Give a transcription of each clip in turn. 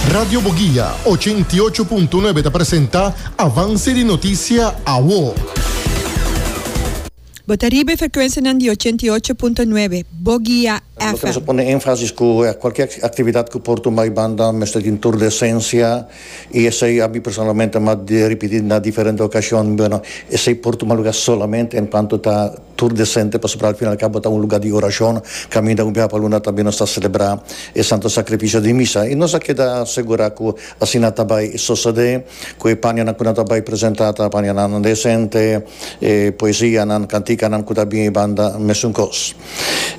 Radio Boguia, ochenta i ocho punto nuebe ta presenta avanse di notisia awo. Bo ta riba e frekuensianan di ochenta i ocho punto nuebe, Boguia Nos ta mester pone énfasis ku kualkier aktividat ku por tumba e banda mester tin tur di esensia i esei a mi personalmente m'ha ripití na diferente okashon, bueno, esei por tuma lugá solamente enkuanto ta Tur desente pasobra al fin al cabo ta un lugar di oracion. Caminda un biaha pa luna tambe nos ta celebra e Santo Sacrificio di Misa y nos a keda segura cu asina ta bay sosode, cu e panianan cu nan ta bay presenta ta panianan desente, e poesianan, canticanan cu ta bini banda mesun cos.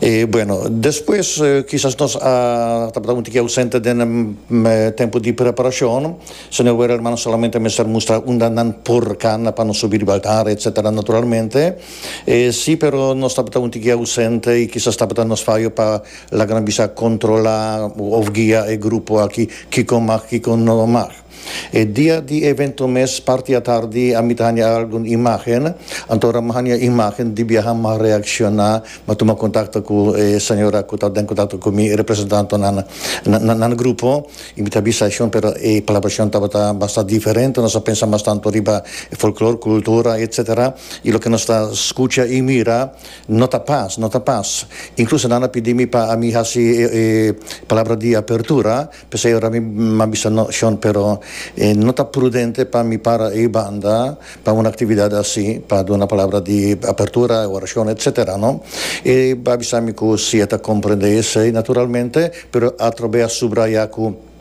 E bueno, despues kisas nos a tabata un tiki ausente den e tempo di preparacion. Señor Ware hermano solamente mester mustra unda nan por cana pa nos subi riba altar etc. Naturalmente e si pero nos tabata un tiki ausente y kisas tabata nos fayo pa laga nos bisa controla of guia e grupo aki kiko mag kiko no mag. E dia di evento mes parti atardi a mi ta hanja algun imagen anto ora mi hanja imagen di biaha mi a reacciona mi a tuma contacto cu e señora cu ta den contacto cu mi e representantenan na nan grupo Y mi ta bisa Shon pero e palabra Shon tabata basta diferente, nos a pensa mas tanto riba e folklor, kultura etc. Y loke nos ta skucha y mira no ta pas, no ta pas. Inkluso nan a pidi mi pa ami hasi e palabra di apertura, p'esei ora mi a bisa no Shon pero no ta prudente pa mi para ei banda, Pa un actividad así, pa duna palabra di apertura, oracion, etc. No? E a bisa mi cu si e ta comprende esey, naturalmente, pero atrobe a subraya cu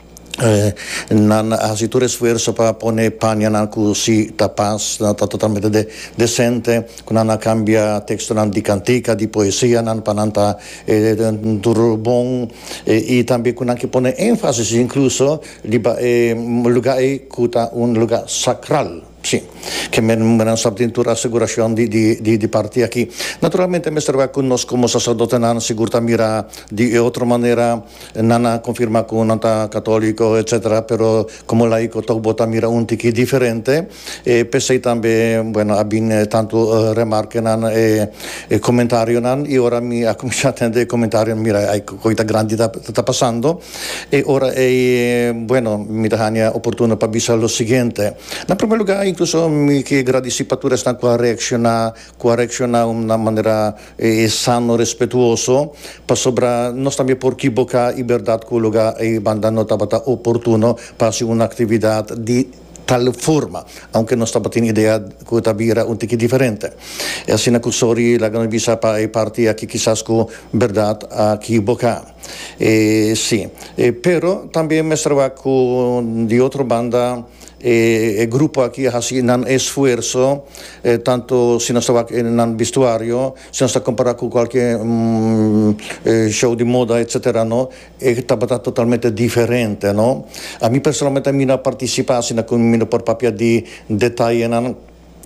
nan a haci tur esfuerzo pa pone panianan cu si ta pas, ta totalmente de, decente, cu nan a cambia textonan di cantica, di poesianan pa nan ta tur bon, y tambe cu nan ke pone énfasis incluso, Riba e luga ei ku ta un luga sakral, si, ke menan sa tin tur asegurashon di parti aki. Naturalmente mester wak ku nos komo saserdotenan sigur ta mira di e otro manera, nan a konfirmá ku nan ta katoliko, etsetera, pero komo laiko tok bo ta mira un tiki diferente. E p'esei tambe, bueno, a bin e tantu remarkenan, e e komentarionan, i ora mi a kuminsá tende e komentarionan, mira, ai ku koita grandi ta ta pasando. E ora ei, bueno, mi ta hania oportuno pa bisa lo siguiente, na promé lugá, inkluso mi ke gradisí pa tur esnan ku a reakshoná, ku a reakshoná na un manera sano, respetuoso, pasobra nos tambe por kiboká i bèrdat ku lugá ei banda no tabata oportuno pa hasi un aktividat di. tal forma, aunke nos tabatin idea cu ta bira un tiki diferente. E asina cu Sori laga nos bisa pa e parti aki kisas cu berdad a kiboca. E si. E pero tambe mester wak cu di otro banda e e grupo aki a haci nan esfuerso, tanto si nos ta wak nan vestuario, si nos ta compara cu cualkier show di moda etc. No. E tabata totalmente diferente, no? A mi personalmente a mi no a participa asina cu mi no por papia di detayenan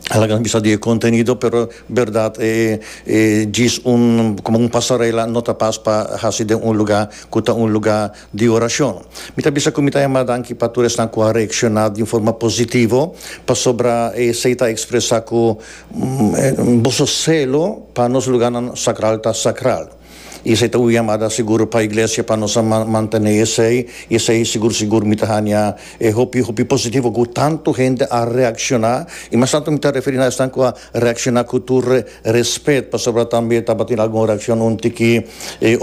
a laga nos bisa di e contenido pero berdad e e djis un como un pasarela no ta pas pa haci den un lugar cu ta un lugar di oracion. Mi ta bisa cu mi ta yama danki pa tur esnan cu a reacciona di un forma positivo pasobra esey ta expresa cu boso celo pa nos lugarnan sacral ta sacral. I esei ta un yamada sigur pa Iglesia pa nos a mantené esei, i esei sigur sigur mi ta haña e hopi hopi positivo ku tantu hende a reakshoná, i mas tantu mi ta referí na esnan ku a reakshoná ku tur respet, pasobra tambe tabatin algun reakshon un tiki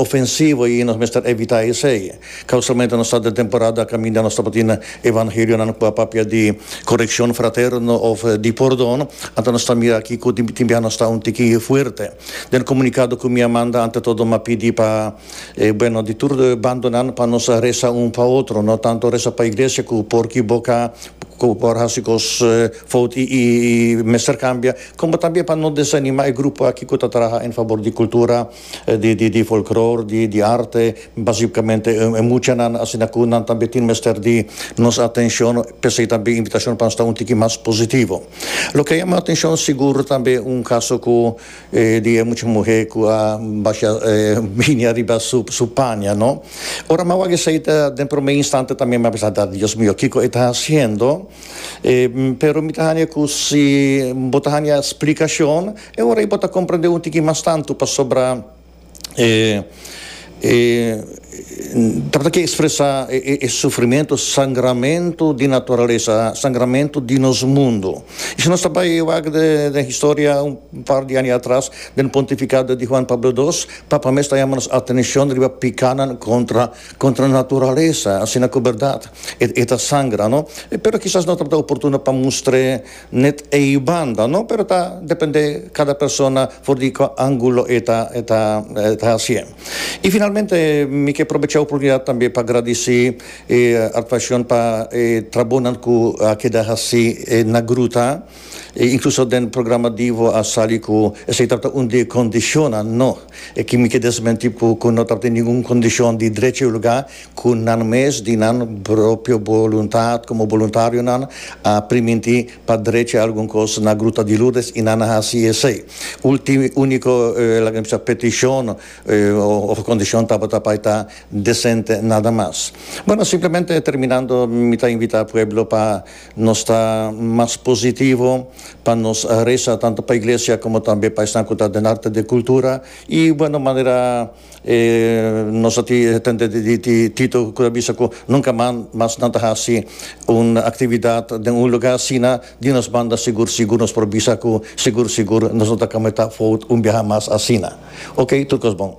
ofensivo i nos mester evitá esei. Ka usualmente nos ta den temporada kaminda nos tabatin evangelionan ku a papia di korekshon fraterno òf di pordon, anto nos ta mira aki ku tin tin biaha nos ta un tiki fuerte. Den comunicado cu mi a manda ante todo m'a pidi pa e bueno di tur bandonan pa nos a reza un pa otro, no tanto reza pa iglesia cu por kiboca, cu por haci cos fout y mester cambia, como también pa no desanima e grupo aki cu ta traha en favor di cultura, di folklor, di arte, basicamente e muchanan, asina cu nan tambe tin mester di nos atencion, p'esey tambe invitacion pa sta un tiki mas positivo. Lo ke a yama atenshon sigur tambe un kaso ku di e mucha muhé ku a basha binia riba su su paña no. Ora m'a wak esei ta den promé instante tambe m'a bisa ta Dios mio kiko e ta hasiendo pero mi ta haña ku si bo ta haña splikashon e ora ei bo ta komprendé un tiki mas tantu pasobra e e trata ke ekspresá e sufrimentu, sangramentu di naturalesa, sangramentu di nos mundu. I si nos ta bai wak den historia un par di aña atras den pontifikado di Huan Pablo Dos, Papa mes ta yama nos atenshon riba pikanan kontra kontra naturalesa asina ku bèrdat e ta sangra, no? Pero kisas no tabata oportuno pa mustr'é. Net ei banda no pero ta depende cada persona for di cu angulo e ta e ta e ta hacié. Y finalmente mi ke probecha oportunidad tambe pa gradici e Artvacion pa e trabonan cu a keda haci na gruta y incluso den programa Divo a sali cu esey tabata un di e condicionnan no, e ki mi ke desmenti cu no tabata ningun condicion di drecha y lugar. Ku nan mes di nan propio boluntat komo boluntarionan a primintí pa drecha algun kos na Gruta di Lourdes i nan a hasi esei. Ulti úniko laga mi bisa petishon òf kondishon tabata pa e ta desente nada mas. Bueno, simplemente terminando mi ta invitá pueblo pa nos ta mas positivo, pa nos resa tantu pa iglesia komo tambe pa esnan ku ta den arte de kultura i bueno manera E nos a tende di Tito cu ta bisa cu nunca mas nan ta haci un actividad den un lugar asina di nos banda sigur sigur nos por bisa cu sigur sigur nos no ta cometa fout un biaha mas asina ok tur cos bon.